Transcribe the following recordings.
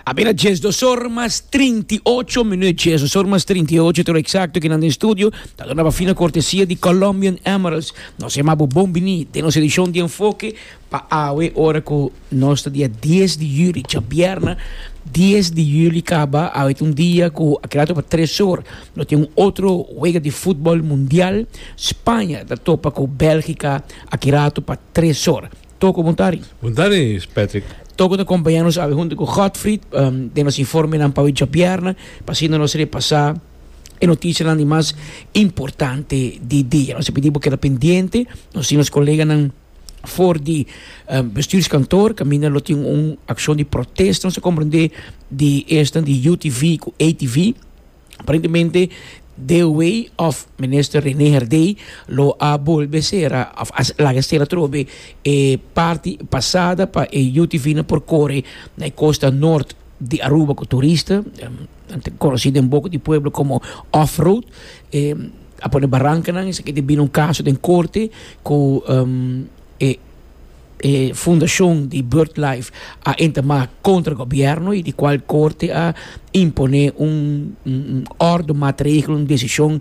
A bira djes dos or mas trinti ocho minuut, djes dos or mas trinti ocho toro eksakto kinan den studio, ta dona pa fina kortesia di Colombian Emeralds. Nos e mabo bon bini den nos edishon di Enfoke pa awe ora ku nos ta dia dies di juli, djabièrnè dies di juli kaba. Awe ta un dia ku a keda ato pa tres or nos tin un otro wega di futbòl mundial, Spaña ta topa ku Bèlgika a keda ato pa tres or. Toko Buntari. Buntari, Patrick. Toko ta kompañá nos awe huntu ku Godfried den nos informenan pa awe djobièrnè pa asina nos repasá e notisianan di mas importante di dia. Nos ta pidi bo keda pendiente, nos tin nos koleganan for di bestuurskantoor kaminda lo tin un akshon di protesta, nos ta komprendé di esnan di UTV ku ATV. Aparentemente de way of Minister Rene Herdey lo a bolbe sera of a laga sera trobe e parti pasada pa e UTV na por kore na e costa nort di Aruba ku turista konosi den boko di pueblo komo off road a pone barankanan esaki ta bini un kaso den korte ku e E fundashon di Birdlife a intima kontra gobièrnu i di kual korte a imponé un òrdu, matregel, un desishon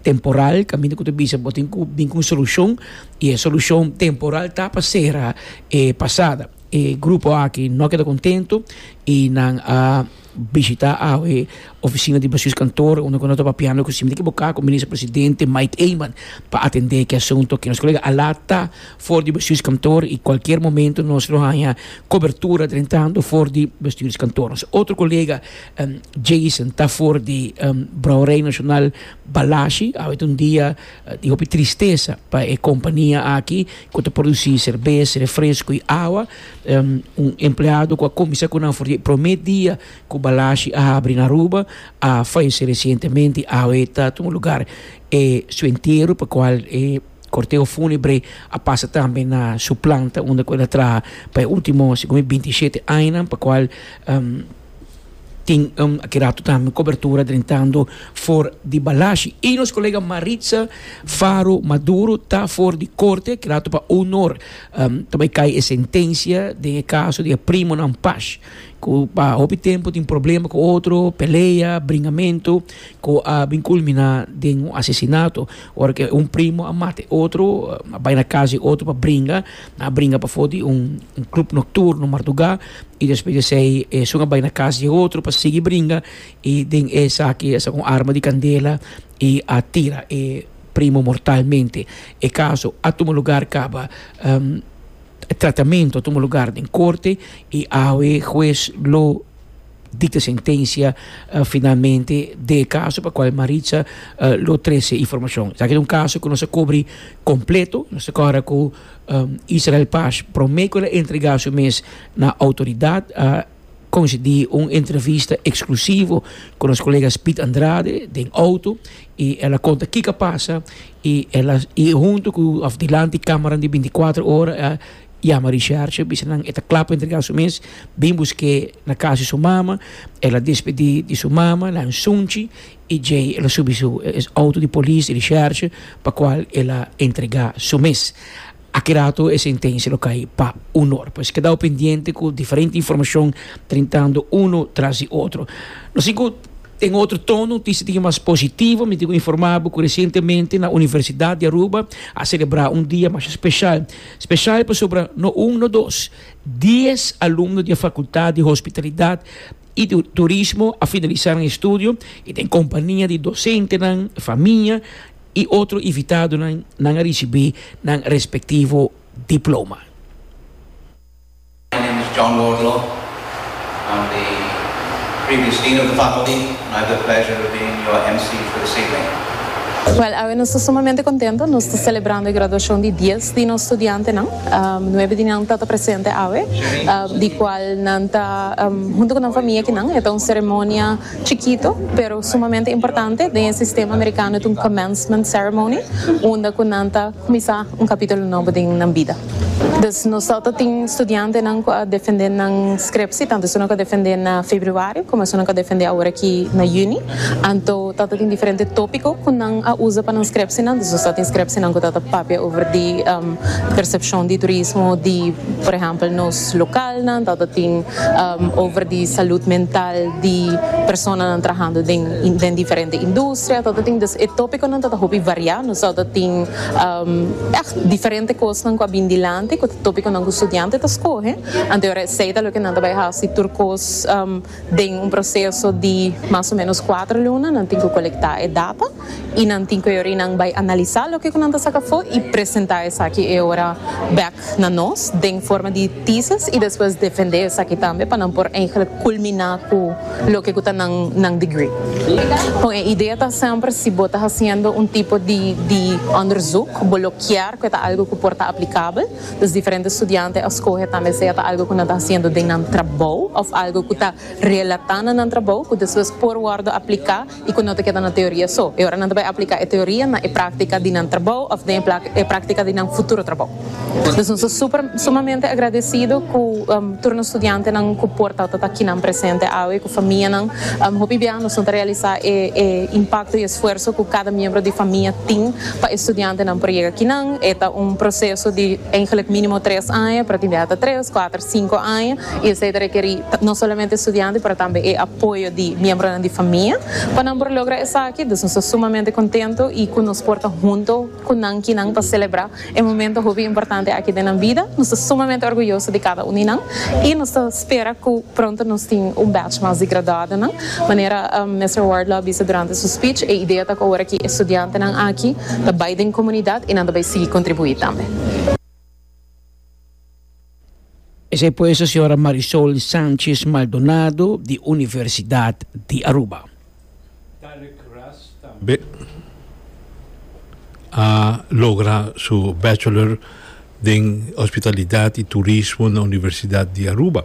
temporal kaminda ku ta bisa bo tin ku bin ku un solushon i e solushon temporal ta pa sera e pasada. E grupo aki no a keda kontentu i nan a Bishita awe ofisina di Basuis Kantoor unda ku nos ta papiando ku siempre tin ke boka ku Minister Presidente Mike Eman pa atende ki asunto ke nos kolega a laat ta for di Basuis Kantoor i kualkier momento nos lo haña kobertura drentando for di Basuis Kantoor. Nos otro kolega Jason ta for di Brouwerij Nasional Balashi awe ta un dia di hopi tristesa pa e kompania aki ku ta produsi serbes, refresko i awa Un empleado ku a kuminsá ku nan for di e promé dia ku Balashi a habri na Aruba a falesé resientemente. Awe ta tuma lugar e su entero pa kual e korteo fúnebre a pasa tambe na su planta unda ku el a traha pa e último segun mi binti i shete añanan pa kual. tin aki rato tambe cobertura drentando for di balashi y nos colega Maritza Faro Maduro ta for di corte aki rato pa honor ta bay cay e sentencia den e caso di e primonan Pash cu pa hopi tempo tin problema cu otro pelea bringamento cu a bin culmina den un asesinato ora cu un primo a mata e otro a bay na casa di otro pa bringa a bringa pafó di un club nocturno marduga y despues di esei esun a bai na cas di e otro pa sigui bringa y den esaki a sa cu un arma di candela y a tira e primo mortalmente. E caso a tuma lugar caba tratamento a tuma lugar den corte y awe huez lo Dikta sentensia finalmente den e kaso pa kual Maritza lo trese informashon. Esaki ta un kaso ku nos a kubri kompleto. Nos ta kòrda ku Israel Paz promé ku el a entregá su mes na outoridat a konsedí un entrevista eksklusivo ku nos kolega Speed Andrade den outo i el a konta kiko a pasa i el a huntu ku òf dilanti kámaranan di binti kuater ora a Yama Richardje, bisa nan e ta kla pa entrega su mes, bin busk'é na kas di su mama, el a despedí di su mama na Ansunchi i djei el a subi su outo di polis di Richardje pa kual el a entregá su mes. Aki rato e sentensia lo kai pa unor. Pues kedao pendiente ku diferente informashon trintando uno tras di otro. No sin ku den otro tono notisia di mas positivo mi tin ku informá bo ku resientemente na Universidat di Aruba a selebrá un dia masha speshal. Spesial pasobra no un no dos, dies alumno di e Fakultat di Hospitalidat i Turismo a finalisa nan e studio i den kompania di dosentenan, famia i otro invitadonan nan a risibí nan respektivo diploma. My name is John Wardlaw. I'm the previous Dean of the Faculty and I have the pleasure of being your MC for this evening. Well, awe nos ta sumamente contento, nos ta celebrando e graduacion di dies di nos studiantenan. Nuebe di nan tata presente awe, di cual nan ta hunto cu nan famia akinan. E ta un ceremonia chikito, pero sumamente importante. Den e sistema Americano ta un commencement ceremony, unda cu nan ta. Kuminsá un kapítulo nobo den nan bida. Dus nos tabata ta tin studiantenan ku a defendé nan skrepsie, tantu esunnan ku a defendé na febrüario komo esunnan ku a defendé awor aki na yüni. Anto tabata tin diferente tópiko ku nan a usa pa nan skrepsienan. Dus nos tabata tin skrepsienan ku tabata papia over di persepshon di turismo di, por ehèmpel, nos lokalnan, tabata tin over di salùt mental di personanan trahando den diferente industria. Sweater ta tin dus e topiconan ta ta hopi variá. Nos a ta tin echt diferente cosnan cu a bin dilanti cu ta topiconan cu studianten ta scoge. Anto e ora esey ta lo cu nan ta bay haci tur cos den un proceso di mas o menos cuater luna. Nan tin cu colectá e data y nan tin cu e ora y nan bay analisá loke cu nan ta saca afo y presentá esaki e ora bek na nos den forma di thesis y despues defendé esaki tambe pa nan por eigenlijk culminá cu. loke ku ta nan nan degree. Kon e idea ta semper si bo ta hasiendo un tipo di di onderzoek, bo lo kier ku e ta algu ku por ta aplikabel, dus diferente studiante a skohe tambe sea ta algu ku nan ta hasiendo den nan trabou òf algu ku ta relatá na nan trabou ku despues por wòrdu apliká. i ku no ta keda na teoria so, e ora nan ta bai aplika e teoria na e práktika di nan trabou òf den e práktika di nan futuro trabou. Dus nos ta super sumamente agradesido ku tur nos studiantenan ku por ta ta kinan presente awe ku famianan. Hopi bia nos no ta realisá e e impakto i esfuerso ku kada miembro di famia tin pa e studiantenan por yega kinan. E ta un proseso di, eingelik, mínimo tres aña, pero tin bia ta tres, kuater, sinku aña. y esey ta requeri no solamente estudiante pero tambe e apoyo di miembronan di famia pa nan por logra esaki, dus nos ta sumamente contento y cu nos por ta hunto cu nan ki nan ta celebra e momento hopi importante aki den nan bida, nos ta sumamente orguyoso di cada un di nan y nos ta spera cu pronto nos tin un batch mas di graduadonan, manera Mister Ward lo a bisa durante su speech, e idea ta cu awor aki e estudiantenan aki ta bay den comunidad y nan ta bay sigui contribui tambe. Esei pues a señora Marisol Sanchez Maldonado di Universidad di Aruba. Derrick Ras tambe a logra su Bachelor den Hospitalidad y Turismo na Universidad di Aruba.